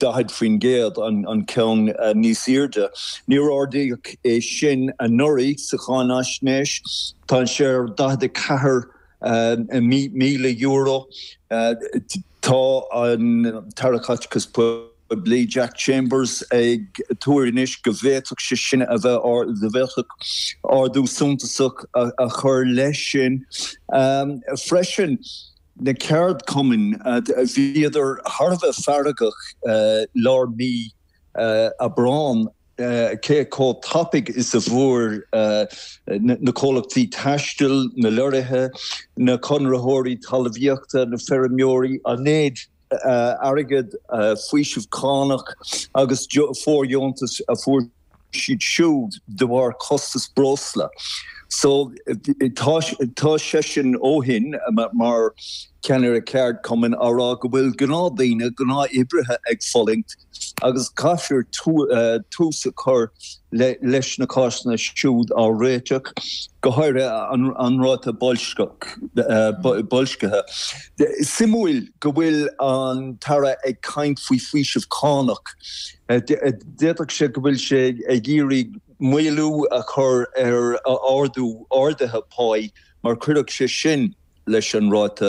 40%, an ceann níos airde. Níor ardaíodh é sin anuraidh sa cháinaisnéis. Tá sé ar €44,000. Tá an tAire Caiteachais Phoiblí, Jack Chambers, ag tuar anois go bhféadfadh sé sin a bheith, go bhféadfadh ardú suntasach a chur leis sin freisin. na ceardchumainn, bhíodar thar a bheith feargach lár mí Aibreáin cé chomh tapaidh is a fuair na comhlachtaí taistil, na lorraithe, na conraitheoirí talmhaíochta, na feirmeoirí an méid airgid, faoiseamh cánach agus fóirdheontais a fuair siad siúd de bharr costas breosla. So tá seisean ó shin mar cheannaire ceardchumainn á rá go bhfuil gnáthdhaoine, gnáthoibrithe ag fulaingt. agus caithfear tús a chur leis na cásanna siúd á réiteach, go háirithe an ráta boilscithe. Suimiúil go bhfuil an tAire ag caint faoi faoiseamh cánach. D'fhéadfadh sé go bhfuil sé ag iarraidh maolú a chur ar ardú arduithe pá, mar chuirfeadh sé sin, leis an ráta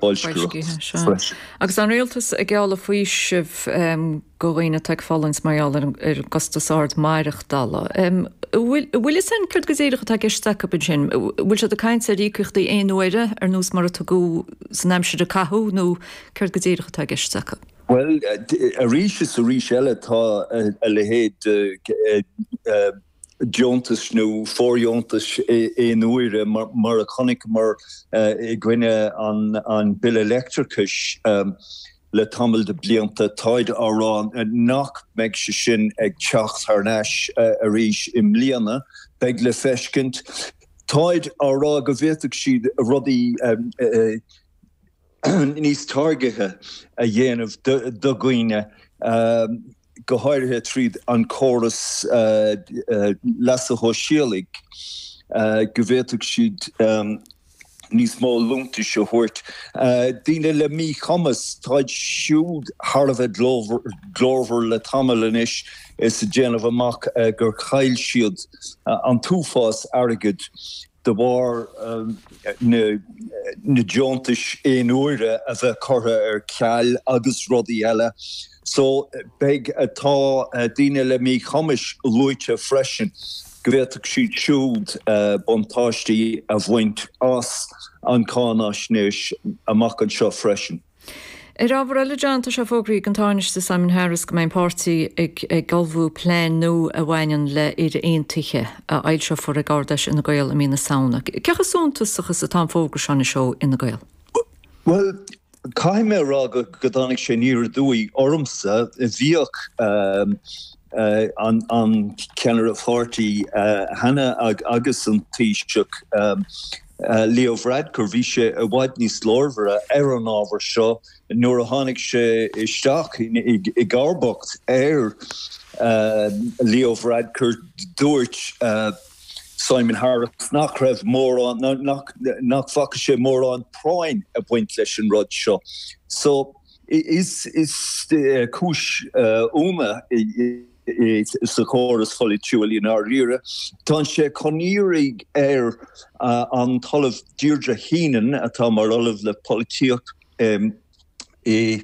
boilscitheachta freisin. Agus an Rialtas ag gealladh faoisimh do dhaoine atá ag fulaingt mar gheall ar an gcostas ard maireachtála, an bhfuil a fhios againn céard go díreach atá i gceist acu ansin? An bhfuil siad ag caint ar íocaíochtaí aon uaire ar nós mar a tugadh san aimsir a caitheadh nó céard go díreach atá i gceist acu? Bhuel, arís is arís eile tá a leithéid de. deontais nó fóirdheontais aon uaire, mar a chonaiceamar i gcoinne an bhille leictreachais le tamall de bhlianta, táid á rá nach mbeidh sé sin ag teacht thar n-ais arís i mbliana. Beidh le feiscint. Táid á rá go bhféadfadh siad rudaí. níos targaidithe a dhéanamh do dhaoine, go háirithe tríd an gcóras leasa shóisialaigh, go bhféadfadh siad níos mó liúntais a thabhairt. Daoine le míchumas, táid siúd thar a bheith glórmhar le tamall anois is ag déanamh amach gur chaill siad an t-uafás airgid. de bharr na deontais aonuaire a bheith curtha ar ceal agus rudaí eile. So, beidh, tá daoine le míchumais luaite freisin, go bhféadfadh siad siúd buntáistí a bhaint as an gcáinaisnéis amach anseo freisin. Ar ábhar eile, John, tá sé fógraithe ag an Tánaiste Simon Harris go mbeidh an páirtí ag ag ullmhú plean nua a bhaineann le Éire Aontaithe, a fhoilseofar ag Ard-Fheis Fhine Gael i mí na Samhna. Cé chomh suntasach is atá an fógra seo anois ó Fhine Gael? Bhuel, caithfidh mé a rá go go dtáinig sé aniar aduaidh ormsa, bhíodh an an ceannaire páirtí cheana agus an Taoiseach Leo Varadkar, bhí sé i bhfad níos glórmhaire ar an ábhar seo nuair a tháinig sé isteach i gcomharbacht ar Leo Varadkar. Dúirt Simon Harris nach raibh mórán, nó nach bhfaca sé mórán práinn ag baint leis an rud seo. So is cúis ionadh. sa chóras polaitiúil i ndáiríre. Tá sé chun iarraidh ar an Ollamh Deirdre Heenan, atá mar Ollamh le Polaitíocht i.